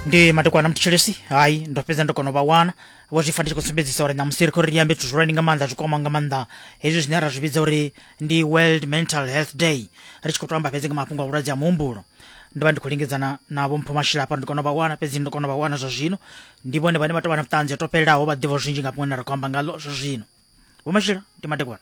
ndi matikwana mthithelesi hayi ndo fhedza ndo kona u vha wana vho zwi fanela kusumbedzisa uri ṋamusi ri khou ri ri ambe zwithu zwihulwane nga maanḓa zwi kwama nga maanḓa hezwi zwine ra zwi vhidza uri ndi world mental health day ri tshi khou to amba fhedzi nga mafhungo a vhulwadze ha muhumbulo ndo vha ndi khou lingedzana navho mpho mashilapa ndi kona u vha wana fhedzi ndo kona u vha wana zwa zwino ndi vhone vhane vha tou vha na vhuṱanzi ho to fhelelaho vha ḓivha zwinzhi nga fhungo ine ra khou amba ngalo zwa zwino vho mashila ndi matekwana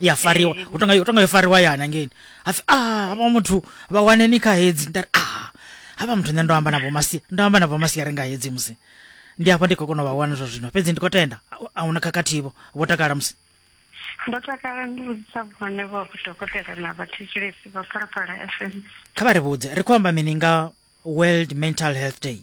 ya fariwa hu tonga hu tonga yo fariwa ya hanengeni hapfi a ah, havha muthu vha wane ni kha hedzi nda a ah, havha muthu nṋe ndo amba na vhomasia ndo amba na vhomasia ri nga hedzi musi ndi hafha ndi khou kona u vha wana zwa zwino fhedzi ndi khou tenda a huna khakhathivo vho takala musi ndo takala ndi vhudzisa vhone vho dokotela na vhathetshelesi vha phalaphala fm kha vha ri vhudze ri khou amba mini nga world mental health day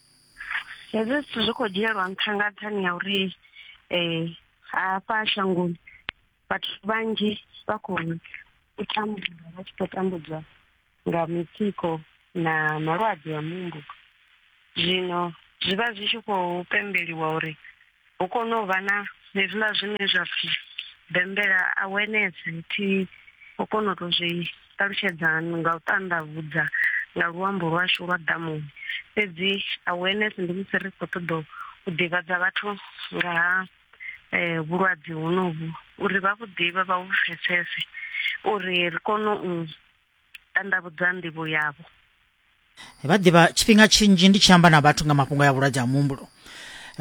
hezwi zwithu zwi khou dzhielwa nṱha nga nṱhani ya uri um hafha shangoni vhathu vhanzhi vha khou u tambula vha tshi khou tambudzwa nga mitsiko na malwadze a muhumbulo zwino zwi vha zwi tshi khou pembeliwa uri hu kone u vha na hezwiḽa zwine zwa pfhi bembela awareness thi u kona u tou zwi ṱalutshedza nga u ṱandavhudza nga luambo lwashu lwa ḓamuni fhedzi awareness ndi musi ri khou ṱoḓa u ḓivhadza vhathu nga ha um vhulwadze honovhu uri vha vhu ḓivhe vha vhu pfhesese uri ri kone u tandavhudza nḓivho yavho vha ḓivha tshifhinga tshinzhi ndi tshi amba na vhathu nga mafhungo ya vhulwadze ha muhumbulo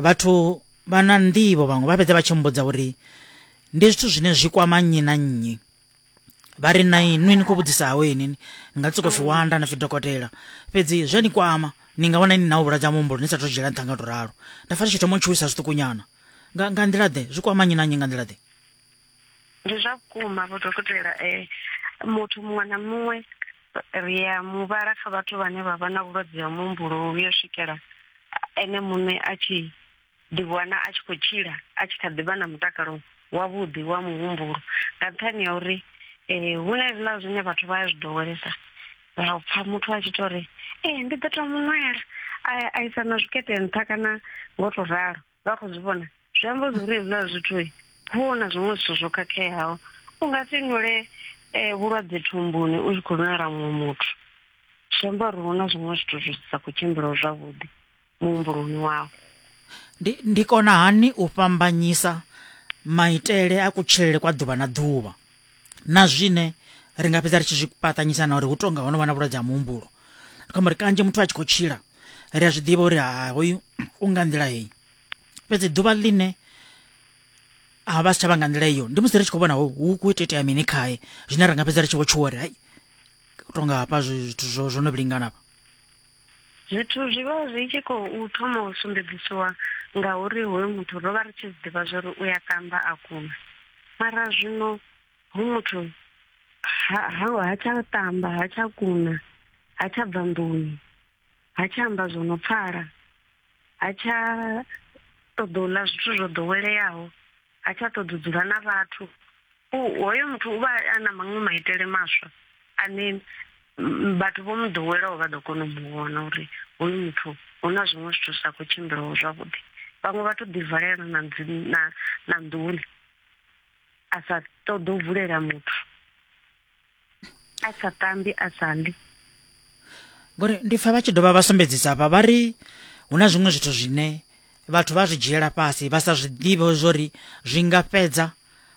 vhathu vha na nḓivho vhaṅwe vha fhedza vha tshi mbudza uri ndi zwithu zwine zwi kwama nnyi na nnyi vha ri na inwi ni khou vhudzisa hawe ini ni nga tsoko pfi wanda na pfi dokotela fhedzi zwi a ni kwama ni nga vhona ini na u vhulwadze ha muhumbulo ni sa tou dzhiela nṱha nga tou ralo nda fa tshi thoma u tshuwisa zwiṱukunyana nga nḓila ḓe zwi kwama nnyi na nnyi nga nḓila ḓe Ndi zwa vhukuma vho dokotela eh muthu muṅwe na muṅwe ri ya muvhala kha vhathu vhane vha vha na vhulwadze ha muhumbulo u yo swikela ene muṋe a tshi ḓiwana a tshi khou tshila a tshi kha ḓi vha na mutakalo wavhuḓi wa muhumbulo nga nṱhani ha uri eh hu na hezwiḽa zwine vhathu vha ya zwi ḓowelesa ra u pfha muthu a tshi tou ri ee ndi ḓo tou muṅwela a isa na zwikete nṱha kana ngo tou ralo vha khou zwi vhona zwi amba zwi uri hezwiḽa zwithu hu na zwiṅwe zwithu zwo khakheaho u nga si nwule um vhulwadze thumbuni u tshi khou nwela muṅwe muthu zwi amba uri hu na zwiṅwe zwithu zwi sa khou tshimbila zwavhuḓi muhumbuloni wawe ndi ndi kona hani u fhambanyisa maitele a kutshilele kwa ḓuvha na ḓuvha na zwine ri nga fhedza ri tshi zwi paṱanyisa na uri hu tonga ho no vha na vhulwadze ha muhumbulo ri khombo uri kanzhi muthu a tshi khou tshila ri a zwi ḓivha uri ha hoyu u nga nḓila heyi fhedzi ḓuvha ḽine ha vha si tsha vha nga nḓila iyo ndi musi ri tshi khou vhona hu khou ita itea mini khae zwine ra nga fhedza ri tshi vho tshuwa uri hai u tonga hafha zwithu zwo no vhilingana Zwithu zwi vha zwi tshi khou thoma u sumbedzisiwa ngauri hoyu muthu ro vha ri tshi zwi ḓivha zwauri u ya tamba a kuna mara zwino hu muthu ha ha ha tsha tamba ha tsha kuna ha tsha bva nḓuni ha tsha amba zwo no pfala ha tsha ṱoḓa u ḽa zwithu zwo ḓoweleaho. ha tsha ṱoḓa u dzula na vhathu hoyo muthu u vha a na maṅwe maitele maswa ane vhathu vho mu ḓowelaho vha ḓo kona u mu vhona uri hoyu muthu hu na zwiṅwe zwithu sa khou tshimbilaho zwavhuḓi vhaṅwe vha to ḓivalela na na nḓuni a sa ṱoḓa u vulela muthu a sa tambi a sa ḽi ngori ndi pfa vha tshi dovha vha sumbedzisa hafha vha ri hu na zwiṅwe zwithu zwine vhathu vha zwi dzhiela fhasi vha sa zwi ḓivhe zwori zwi nga fhedza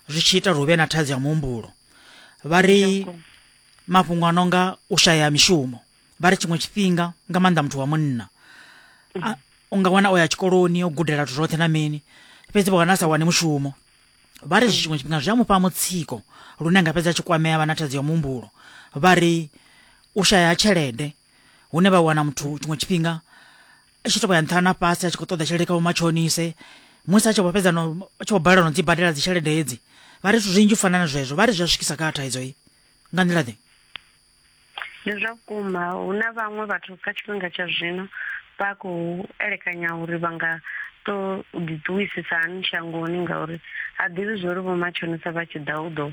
zwi tshi ita uri hu vhe na thaidzo ya muhumbulo vha ri mafhungo a no nga u shaya mishumo vha ri tshiṅwe tshifhinga nga maanḓa muthu wa munna u nga wana o ya tshikoloni o gudela zwithu zwoṱhe na mini fhedzi vha wana a sa wane mushumo vha ri zwiṅwe tshifhinga zwi a mufha mutsiko lune nga fhedza tshi kwamea vha na thaidzo ya muhumbulo vha ri u shaya tshelede hune vha wana muthu tshiṅwe tshifhinga i tshi tovha ya nṱha na fhasi a tshi khou ṱoḓa tshelede kha vhomatshonise musi a tshi vho fhedza no a tshi vho balelwa no dzi badela dzitshelede hedzi vha ri zwithu zwinzhi u fana na zwezwo vha ri zwi a swikisa kha thaidzo i nga nḓila ḓe Ndi zwa vhukuma hu na vhaṅwe vhathu kha tshifhinga tsha zwino vha khou elekanya uri vha nga to ḓiṱuwisisa hani shangoni ngauri ha ḓivhi zwo ri vhomatshonisa vha tshi ḓa u ḓo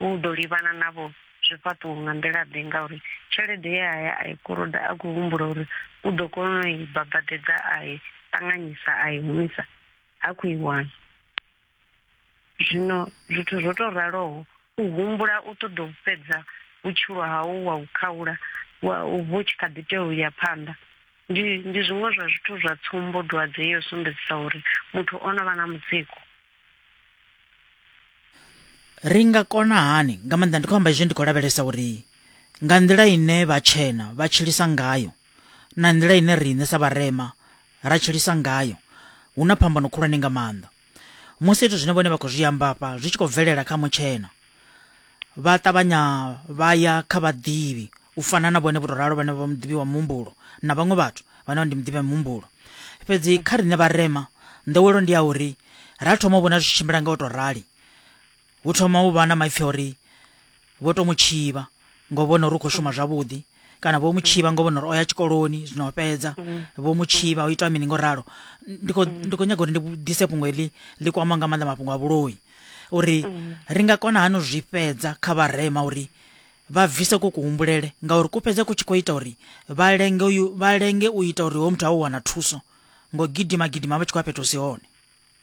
u ḓo livhana navho zwifhaṱuwo nga nḓila ḓe ngauri tshelede ye haya a i koloda a khou humbula uri u ḓo kona u i babadedza a i ṱanganyisa a i humisa ha khou i wana Zwino zwithu zwo tou raloho, u humbula u ṱoḓa u fhedza vhutshilo hau wa u khaula wa, vhu tshi kha ḓi tea u ya phanḓa, ndi, ndi zwiṅwe zwa zwithu zwa tsumbo dwadze yo sumbedzisa uri muthu o no vha na mutsiko. Ri nga kona hani, nga maanḓa ndi khou amba hezwi ndi khou lavhelesa uri nga nḓila ine vhatshena vha tshilisa ngayo, na nḓila ine riṋe sa vharema ra tshilisa ngayo hu na phambano khulwane nga maanḓa musi zwithu zwine vhone vha khou zwi amba afha zwi tshi khou bvelela kha mutshena vha ṱavhanya vha ya kha vhaḓivhi u fana na vhone vho tou ralo vhane vha muḓivhi wa muhumbulo na vhaṅwe vhathu vhane vha ndi muḓivhi wa muhumbulo fhedzi kha riṋe vharema nḓowelo ndi ya uri ra thoma u vhona zwi tshimbila nga u tou rali Hu thoma u vha na maipfi a uri vho tou mu tshivha ngo vhona uri u khou shuma zwavhuḓi kana vho mu tshivha ngo vhona uri o ya tshikoloni zwino o fhedza vho mu tshivha o itwa mini ngo ralo ndi khou ndi khou nyaga uri ndi ḓise fhungo heḽi ḽi kwama nga maanḓa mafhungo a vhuloi uri ri nga kona hani u zwi fhedza kha vharema uri vha bvise ku kuhumbulele ngauri ku fhedza ku tshi khou ita uri vha lenge uyu vha lenge u ita uri hoyo muthu a u wana thuso ngo gidima gidima vha tshi khou ya fhethu hu si hone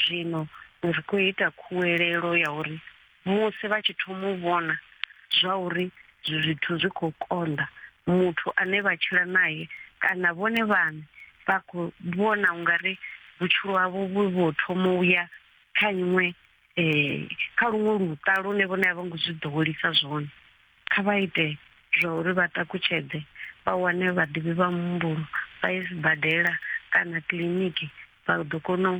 Zwino ri khou ita khuwelelo ya uri musi vha tshi thoma u vhona zwa uri zwithu zwi khou konḓa, muthu ane vha tshila nae kana vhone vhaṋe vha khou vhona u nga ri vhutshilo havho vhu vho thoma u ya kha iṅwe kha luṅwe luṱa lune vhone a vho ngo zwi ḓowelisa zwone. Kha vha ite zwa uri vha ṱakutshedze, vha wane vhaḓivhi vha muhumbulo, vha ye sibadela kana kiḽiniki, vha ḓo kona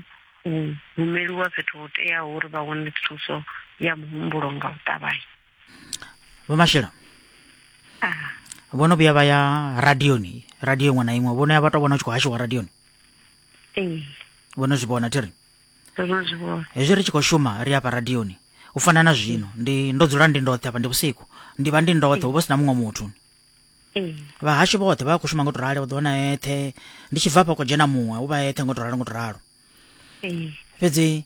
u humeliwa fhethu ho teaho uri vha wane thuso ya muhumbulo nga u ṱavhanya. Vho Mashilo vho no vhuya vha ya radioni radio iṅwe na iṅwe vho no ya vha to vhona u tshi khou hashiwa radioni ee vho no zwi vhona thi ri ndo no zwi vhona hezwi ri tshi khou shuma ri afha radioni u fana na zwino ndi ndo dzula ndi ndoṱhe afha ndi vhusiku ndi vha ndi ndoṱhe hu vha si na muṅwe muthu ee vhahashu vhoṱhe vha khou shuma ngo to rali u ḓo wana eṱhe ndi tshi bva afha khou dzhena muṅwe u vha eṱhe ngo to ralo ngo to ralo ee fhedzi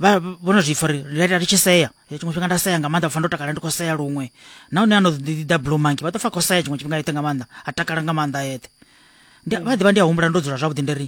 vha vho no zwi pfa uri ri ita ri tshi sea Eh, tshiṅwe tshifhinga nda sea nga maanḓa pfa ndo takala ndi khou sea luṅwe nahone ano ḓi ḓa blue monkey vha ḓo pfa khou sea tshiṅwe tshifhinga eṱhe nga maanḓa a takala nga maanḓa eṱhe Ndi- vha ḓivha ndi a humbula ndo dzula zwavhuḓi ndi ri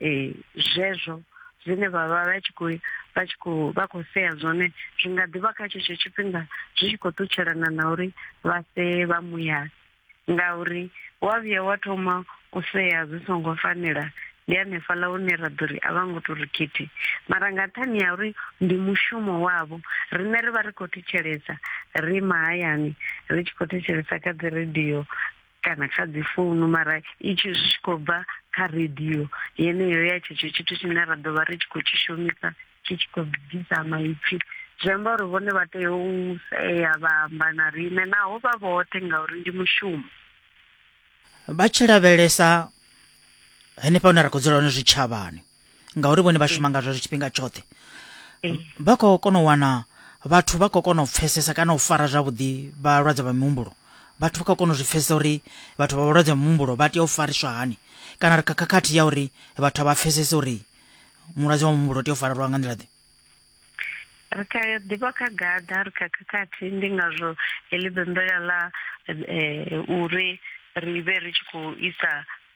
ee zwezwo zwine vha vha vha tshi khou vha tshi khou vha khou sea zwone zwi nga ḓivha kha tshetsho tshifhinga zwi tshi khou ṱutshelana na uri vha see vha muyani ngauri wa vhuya wa thoma u sea zwi songo fanela ndi hanefhaḽa hune ra ḓo ri a vha ngo to ri khithi mara nga nṱhani ya uri ndi mushumo wavho riṋe ri vha ri khou thetshelesa ri mahayani ri tshi khou thetshelesa kha dzi radio kana kha dzi founu mara i tshi zwi tshi khou bva kha radio yeneyo ya tshetsho tshithu tshine ra ḓo vha ri tshi khou tshi shumisa tshi tshi khou bvisa maipfi zwi amba uri vhone vha tea u sea vha amba na riṋe naho vha vhoṱhe ngauri ndi mushumo vha tshi lavhelesa henefha hune ra khou dzula hone zwitshavhani ngauri vhone vha shuma ngazwo tshifhinga tshoṱhe vha khou kona u wana vhathu vha khou kona u pfesesa kana u fara zwavhuḓi vhalwadze vha mihumbulo vhathu vha khou kona u zwi pfesesa uri vhathu vha vhalwadze vha mihumbulo vha tea u fariswa hani kana ri kha khakhathi ya uri vhathu a vha pfesese uri mulwadze wa muhumbulo u tea u farelwa nga nḓila ḓe Ri kha ḓivha kha gaḓa, ri kha khakhathi, ndi ngazwo heḽi bembela ḽa uri ri vhe ri tshi khou isa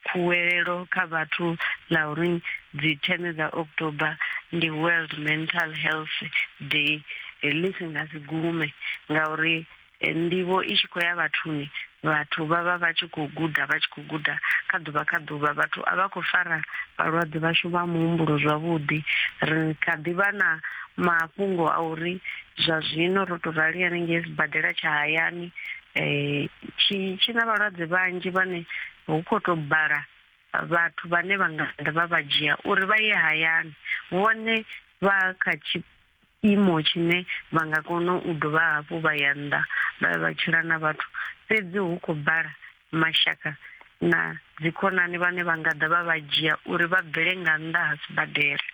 khuwelelo kha vhathu ḽa uri dzithene dza October ndi World Mental Health Day ḽi si nga si gume ngauri Eh, ndivho i tshi khou ya vhathuni vhathu vha vha vha tshi khou guda vha tshi khou guda kha ḓuvha kha ḓuvha vhathu a vha khou fara vhalwadze vhashu vha muhumbulo zwavhuḓi ri kha ḓi vha na mafhungo a uri zwa zwino ro tou rali hanengei sibadela tsha hayani um tshi tshi na vhalwadze vhanzhi vhane hu khou tou bala vhathu vhane vha nga ḓa vha vha dzhia uri vha ye hayani vhone vha kha tshiimo tshine vha nga kona u dovha hafhu vha ya nnḓa vha ya vha tshila na vhathu, fhedzi hu khou bala mashaka na dzikhonani vhane vha nga ḓa vha vha dzhia uri vha bvele nga nnḓa ha sibadela.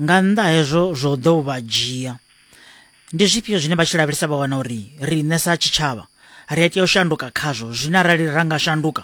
Nga nnḓa ha hezwo zwo ḓo vha dzhia, ndi zwifhio zwine vha tshi lavhelesa vha wana uri riṋe sa tshitshavha ri a tea u shanduka khazwo, zwine arali ra nga shanduka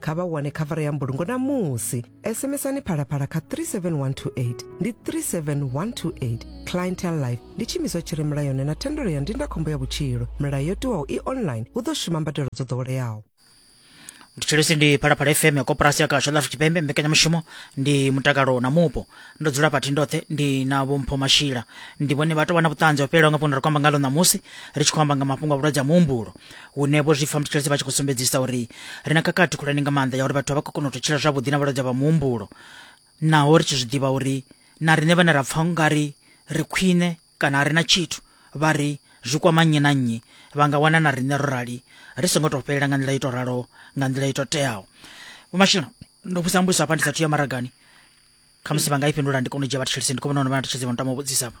kha vha wane khavara ya mbulungo na musi sms-ani phalaphala kha 37128 ndi 37128 clientel life ndi tshiimiswa tshi re mulayoni na thendelo ya ndindakhombo ya vhutshilo milayo yo tiwaho i online hu ḓo shuma mbadelo dzo ḓoweleaho tshitshilisi ndi phalaphala fm ya koporasi ya kasho la afrika tshipembe mbekanyamushumo ndi mutakalo na mupo ndo dzula pathi ndoṱhe ndi na vhompho mashila ndi vhone vha tou vha na vhuṱanzi ho fhelelaho nga fhungo ri khou amba ngalo ṋamusi ri tshi khou amba nga mafhungo a vhulwadze ha muhumbulo hune vho zwi pfa muthetshelesi vha tshi khou sumbedzisa uri ri na khakhathi khulwane nga maanḓa ya uri vhathu vha khou kona u tou tshila zwavhuḓi na vhalwadze vha muhumbulo naho ri tshi zwi ḓivha uri na riṋe vhane ra pfa nga ri ri khwine kana a ri na tshithu vha ri zwi kwama nnyi na nnyi vha nga wana na riṋe ro rali ri songo tou fhelela nga nḓila i tou ralo nga nḓila i tou teaho vhumashino ndo vhusa mbudziso hafha ndi sa thu ya maragani khamusi vha nga i fhindula ndi kone u dzhia vhathetshelesi ndi kho vhona uri vhathetshelesi vha no tama u vhudzisa vha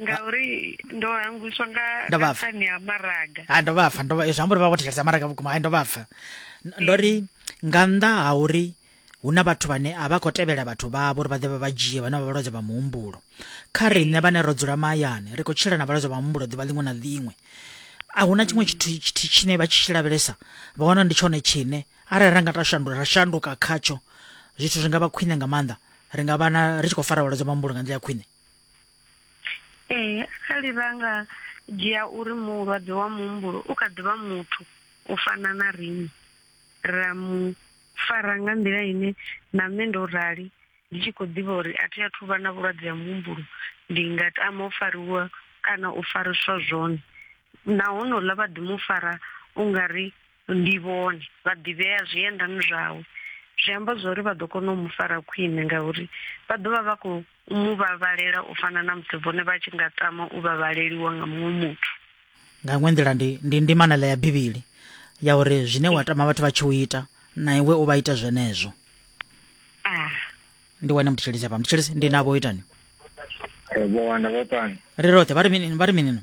ngauri ndo hangwiswa nga Ndo vha pfa. nṱhani ha maraga ha ndo vha pfa ndo vha zwi amba uri vha vho thetshelesa maraga vhukuma hai ndo vha pfa N- ndo ri nga nnḓa ha uri hu na vhathu vhane a vha khou tevhela vhathu vhavho uri vha ḓe vha vha dzhie vhane vha vhalwadze vha muhumbulo kha riṋe vhane ro dzula mahayani ri khou tshila na vhalwadze vha muhumbulo ḓuvha ḽiṅwe na ḽiṅwe a hu na tshiṅwe tshithu tshithu tshine vha tshi tshi lavhelesa vha wana ndi tshone tshine arali ra nga ta shandula ra shanduka khatsho zwithu zwi nga vha khwine nga maanḓa ri nga vha na ri tshi khou fara vhalwadze vha muhumbulo nga nḓila ya khwine Ee, arali ra nga dzhia uri mulwadze wa muhumbulo u kha ḓivha muthu u fana na riṋe ra mu fara nga nḓila ine na nṋe ndo rali ndi tshi khou ḓivha uri a thi a thu vha na vhulwadze ha muhumbulo ndi nga tama u fariwa kana u fariswa zwone, na honouḽa vha ḓi mu fara ungari Ndi vhone vha ḓivhea zwiendani zwawe. Zwi amba zwa uri vha ḓo kona u mu fara khwine ngauri vha ḓo vha vha khou mu vhavhalela u fana na musi vhone vha tshi nga tama u vhavhaleliwa nga muṅwe muthu. Nga iṅwe nḓila ndi, ndi ndimanela ya Bivhili ya uri zwine wa tama vhathu vha tshi u ita na iwe u vha ita zwenezwo. Ah, Ndi wane muthetshelesi hafha. Muthetshelesi, ndi navho itani. Eh, Vho Wanda vho pani. Ri roṱhe vha ri mini? Vha ri mini no?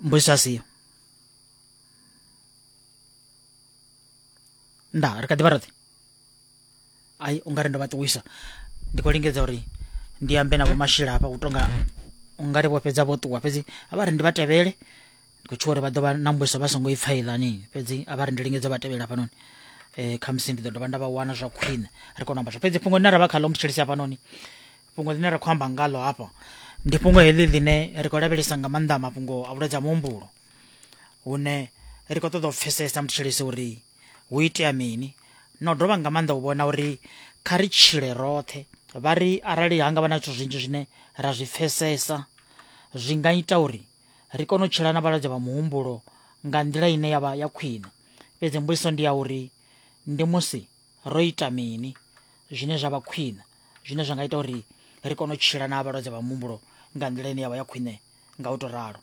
mbudziso asiyo nda ri kha ḓi vha roṱhe ai u nga ri ndo vha ṱuwisa ndi khou lingedza uri ndi ambe na vhomashila hafha u tonga u nga ri vho fhedza vho ṱuwa fhedzi a vha ri ndi vha tevhele ndi khou tshuwa uri vha ḓo vha na mbudziso vha songo i pfa iḽani fhedzi a vha ri ndi lingedza vha tevhela hafhanoni um khamusi ndi ḓo dovha nda vha wana zwa khwine ri kone u amba zwo fhedzi fhungo ḽine ra vha khaḽo muthetshelesi hafhanoni fhungo ḽine ra khou amba ngalo hafha ndi fhungo heḽi ḽine ri khou lavhelesa nga maanḓa mafhungo a vhulwadze ha muhumbulo hune ri khou ṱoḓa u pfesesa muthetshelesi uri hu itea mini na u dovha nga maanḓa u vhona uri kha ri tshile roṱhe vha ri arali ha nga vha na zwithu zwinzhi zwine ra zwi pfesesa zwi nga ita uri ri kone u tshila na vhalwadze vha muhumbulo nga nḓila ine yavha ya khwine fhedzi mbudziso ndi ya uri ndi musi ro ita mini zwine zwa vha khwine zwine zwa nga ita uri ri kone u tshila na vhalwadze vha muhumbulo nga nḓila ine ya vha ya khwine nga u tou ralo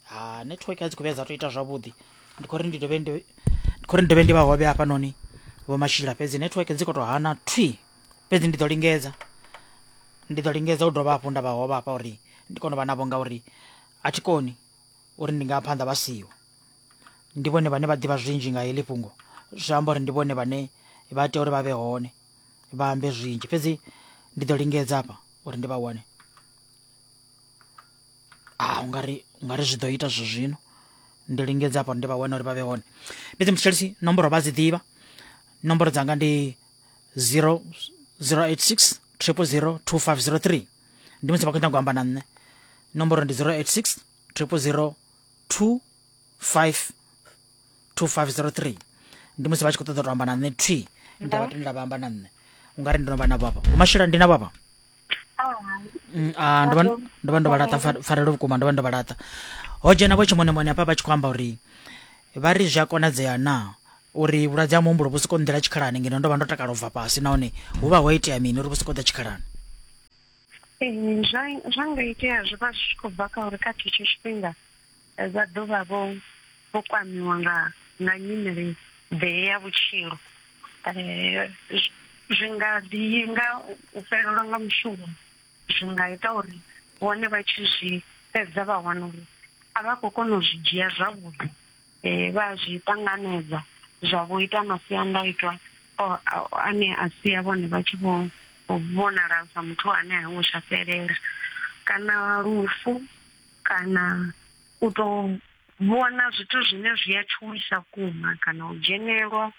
ha network a dzi khou vhuya dza tou ita zwavhuḓi ndi khou ri ndi dovhe ndi khou ri ndi dovhe ndi vha hovhe hafhanoni vho mashila fhedzi network dzi khou tou hana thwi fhedzi ndi ḓo lingedza ndi ḓo lingedza u dovha hafhu nda vha hovha hafha uri ndi kone u vha navho ngauri a thi koni uri ndi nga phanḓa vha siho ndi vhone vhane vha ḓivha zwinzhi nga heḽi fhungo zwi amba uri ndi vhone vhane vha tea uri vha vhe hone vha ambe zwinzhi fhedzi ndi ḓo lingedza hafha uri ndi vha wane a ah, ungari ungari zwi ḓo ita zwi zwino ndi lingedza hafha uri ndi vha wane uri vha vhe hone fhedzi muthetshelisi nomboro vha dzi ḓivha nomboro dzanga ndi 0 086 triple 0 2503 ndi musi vha khou nyanga u amba na nṋe nomboro ndi 086 triple 0 2503 ndi musi vha tshi khou ṱoḓa u to amba na nṋe twi nda vha tendela vha amba na nṋe ungari ndi no vha na vhapa umashela ndi na vhapa mm, ah, ndo vha ndo vha laṱa farelo vhukuma ndo vha ndo vha laṱa ho dzhena vho tshimonemone hafha vha tshi khou amba uri vha ri zwi a konadzea na uri vhulwadze ha muhumbulo vhu soko nḓela tshikhalani ngeno ndo vha ndo takala u bva fhasi nahone hu vha ho itea mini uri vhu soko ḓa tshikhalani Ee zwa zwa nga itea zwi vha zwi tshi khou bva kha uri kha tshetsho tshifhinga vha ḓo vha vho vho kwamiwa nga nga nyimele ḓe ya vhutshilo, zwi nga ḓi nga u fhelelwa nga mushumo zwi nga ita uri vhone vha tshi zwi fhedza vha wana uri a vha khou kona u zwi dzhia zwavhuḓi. eh, vha a zwi ṱanganedza zwa vho ita masiandaitwa o- a- ane a sia vhone vha tshi vho vho vhonala sa muthu ane a ngo tsha fhelela kana lufu kana u tou vhona zwithu zwine zwi a tshuwisa kuma kana u dzhenelwa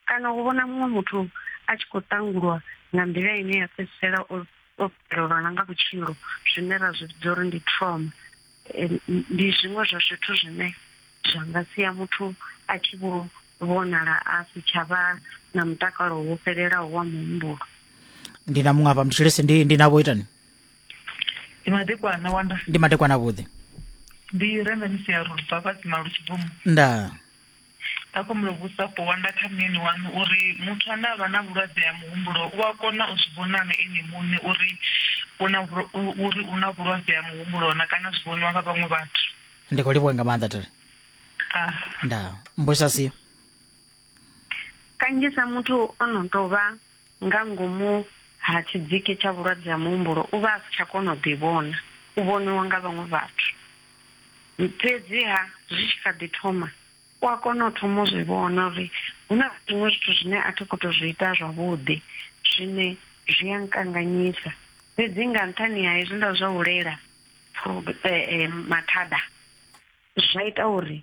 Kana u vhona muṅwe muthu a tshi khou ṱangulwa nga nḓila ine ya fhedzisela o o fhelelwa na nga vhutshilo, zwine ra zwi vhidza uri ndi trauma, ndi zwiṅwe zwa zwithu zwine zwa nga sia muthu a tshi vho vhonala a si tsha vha na mutakalo wo fhelelaho wa muhumbulo. Ndi na muṅwe hafha mutshilisi ndi ndi na vho itani? Ndi madekwana wanda. Ndi madekwana vhuḓi. Ndi renda misi ya rubva fhasi malu tshibvumo. Ndaa. Nda khou mu vhusa Powanda kha muyeni waṋu uri muthu ane a vha na vhulwadze ha muhumbulo u a kona u zwi vhona nga ene muṋe uri u na uri u na vhulwadze ha muhumbulo na kana zwi vhoniwa nga vhaṅwe vhathu. Ndi khou livhuwa nga maanḓa Tere. Ah. Nda mbusa si. Kanzhisa muthu o no tou vha Nga ngomu ha tshidziki tsha vhulwadze ha muhumbulo, u vha a si tsha kona u ḓivhona, u vhoniwa nga vhaṅwe vhathu. Fhedzi-ha, zwi tshi kha ḓi thoma, u a kona u thoma u zwi vhona uri hu na zwiṅwe zwithu zwine a thi khou tou zwi ita zwavhuḓi zwine zwi a nkanganyisa. Fhedzi nga nṱhani ha hezwiḽa zwa u lela mathada, zwa ita uri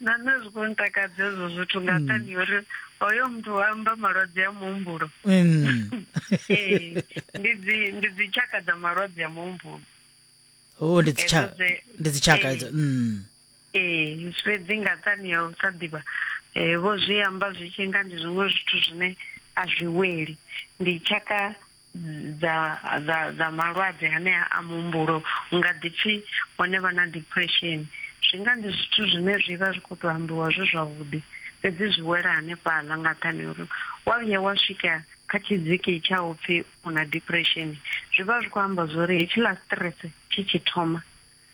na nṋe zwi khou ntakadza ezwo zwithu nga mm. nṱhani uri hoyo muthu wa amba malwadze a muhumbulo mm. ee ndi dzi ndi dzi tshaka dza malwadze a muhumbulo o oh, ndi dzi tshaka ndi dzi tshaka edzo mm ee fhedzi nga nṱhani ya u sa ḓivha um vho zwi amba zwi tshi nga ndi zwiṅwe zwithu zwine a zwi weli ndi tshaka dza dza dza malwadze hanea a muhumbulo u nga ḓi pfi hone vha na depression zwi nga ndi zwithu zwine zwi vha zwi khou tou ambiwa zwi zwavhuḓi fhedzi zwi wela hanefhaḽa nga nṱhani ha uri wa vhuya wa swika kha tshidziki tsha u pfhi u na depression zwi vha zwi khou amba zwa uri hetshiḽa stress tshi tshi thoma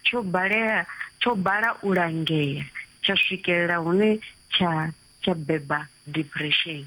tsho balea tsho bala u langea tsha swikelela hune tsha tsha beba depression.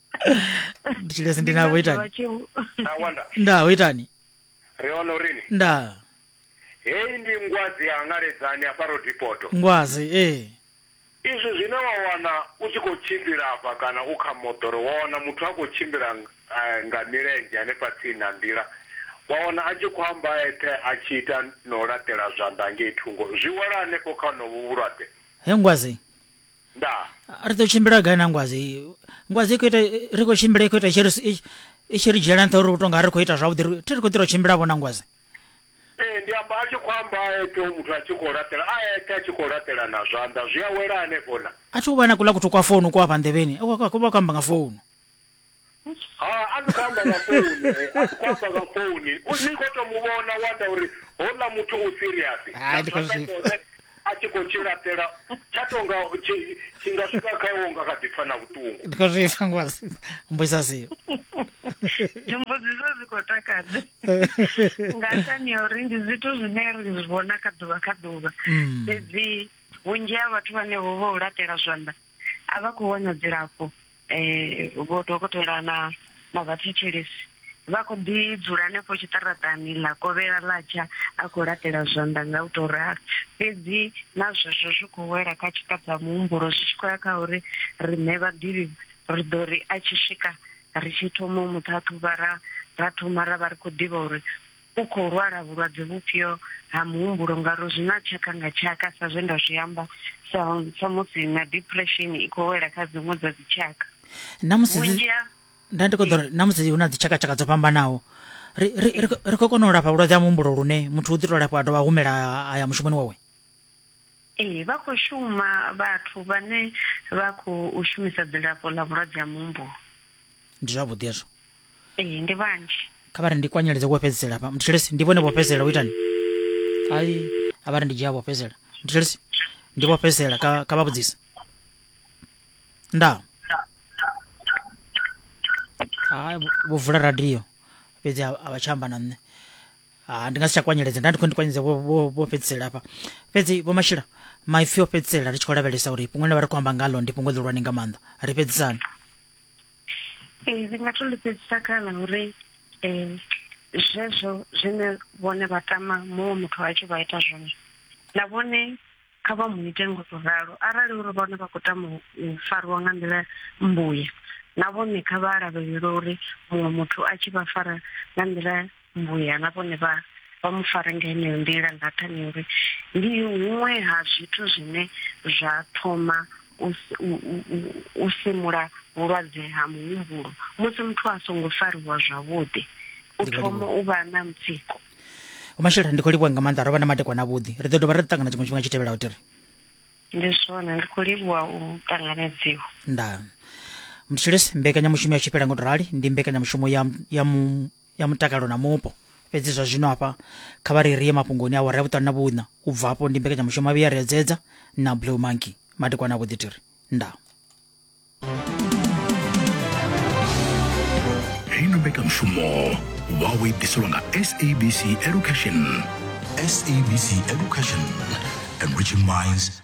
nditshilesi ndi navho itani Tawanda. nda ho itani Ri hone urini. nda Heyi ndi ngwadzi ya ngaledzani hafha Rodipoto. ngwazi ee Izwi zwine wa wana u tshi khou tshimbila hafha kana u kha moḓoro wa wana muthu a khou tshimbila eh, nga milenzhe hanefha tsini na nḓila. Wa wana a tshi khou amba a eṱhe a tshi ita na u laṱela zwanḓa ngei thungo. Zwi wela hanefho kha honovhu vhulwadze. he ngwazi ndaa ri ḓo tshimbila gai na ngwazi ngwazi ikho ita ri khou tshimbila ikho ita i tshi ri dzhiela nṱha uri u tonga ri khou ita zwavhuḓi thi ri khou ḓi ro tshimbila vho na ngwazi ee ndi amba a tshi khou amba a eṱhe u muthu a tshi khou laṱela a eṱhe a tshi khou laṱela na zwanḓa zwi a wela hanefho na a thi u vha na kuḽa kuthu kwa founu ku afha nḓevheni vha khou amba nga founu ha a ni khou amba nga founu eh, a ni khou amba nga founu ni khou to mu vhona wa anda uri houḽa muthu u serious Hai, ndi khou zwi- Hone a tshi khou tshi laṱela tsha tonga tshi- tshi nga swika kha iwe nga kha ḓi pfa na vhuṱungu ndi khou zwi pfa ngosi mbuisa sio mbudziso dzi khou takadza nga nṱhani ya uri ndi zwithu zwine ri zwi vhona kha ḓuvha kha ḓuvha Mm. fhedzi vhunzhi ha vhathu vhane vho vha u laṱela zwanḓa a vha khou wana dzilafho um vho dokotela na na vhathetshelesi vha khou ḓi dzula hanefho tshiṱaraṱani ḽa kovhela ḽa tsha a khou laṱela zwanḓa nga u tou ralo fhedzi na zwezwo zwi khou wela kha tshiṱabva muhumbulo zwi tshi khou ya kha uri riṋe vhaḓivhi ri ḓo ri a tshi swika ri tshi thoma u mu ṱhaṱhuvha ra ra thoma ra vha ri khou ḓivha uri U khou lwala vhulwadze vhufhio ha muhumbulo ngauri zwi na tshaka nga tshaka sa zwe nda zwi amba sa sa musi na depression i khou wela kha dziṅwe dza dzi tshaka. Namusi vhunzhi ha nda ndi kho ḓo namusi hu na dzi tshaka tshaka dzo fhambanaho ri ri ri khou kona u lafha vhulwadze ha muhumbulo lune muthu u ḓi to lafha a dovha humela a ya mushumoni wawe. Ee vha khou shuma vhathu vhane vha khou shumisa dzilafho ḽa vhulwadze ha muhumbulo. Ndi zwavhuḓi hezwo. Ee, ndi vhanzhi. kha vha ri ndi kwanyeledze wo fhedzisela hafha mthetshelesi ndi vhone vho fhedzisela u itani ai a vha ri ndi dzhia vho fhedzisela mthetshelesi ndi vho fhedzisela kha kha vha vhudzise ndaa hai vho- vho vula radio fhedzi a a vha tsha amba na nṋe ha ndi nga si tsha kwanyeledza nda ndi khou ndi kwanyeledze vho vho- vho fhedzisela hafha fhedzi vho mashila maipfi o fhedzisela ri tshi khou lavhelesa uri fhungo ḽine vha ri khou amba ngalo ndi fhungo ḽihulwane nga maanḓa ri fhedzisani Ee, ndi nga to ḽi fhedzisa kana uri um zwezwo zwine vhone vha tama muṅwe muthu a tshi vha ita zwone na vhone kha vha mu ite ngo to ralo arali uri vhone vha khou tama u fariwa nga nḓila mmbuya na vhone kha vha lavhelele uri muṅwe muthu a tshi vha fara nga nḓila vhuya na vhone vha vha mu fare nga heneyo nḓila nga nṱhani uri ndi huṅwe ha zwithu zwine zwa thoma u simula vhulwadze ha muhumbulo musi muthu a songo fariwa zwavhuḓi u thoma u vha na mutsiko mashela ndi khou livhuwa nga maanḓa ro vha na madekwana avhuḓi ri ḓo dovha ra ṱangana tshiṅwe tshifhinga tshi tevhelaho tiri ndi zwone ndi khou livhuwa u ṱanganedziwa ndaa mthilisi mbekanyamushumo ya tshifhela ngo to rali ndi mbekanyamushumo ya ya ya mutakalo na mupo. Fhedzi zwa zwino hafha kha vha ri ri ye mafhungoni awara ya vhuṱanu na vhuṋa. U bva afho ndi mbekanyamushumo ya vhuya ri edzedza na Blue Monkey madekwana a vhuḓi tiri nda. Heino mbekanyamushumo wawe ḓiselwa nga SABC Education. SABC Education, enriching minds,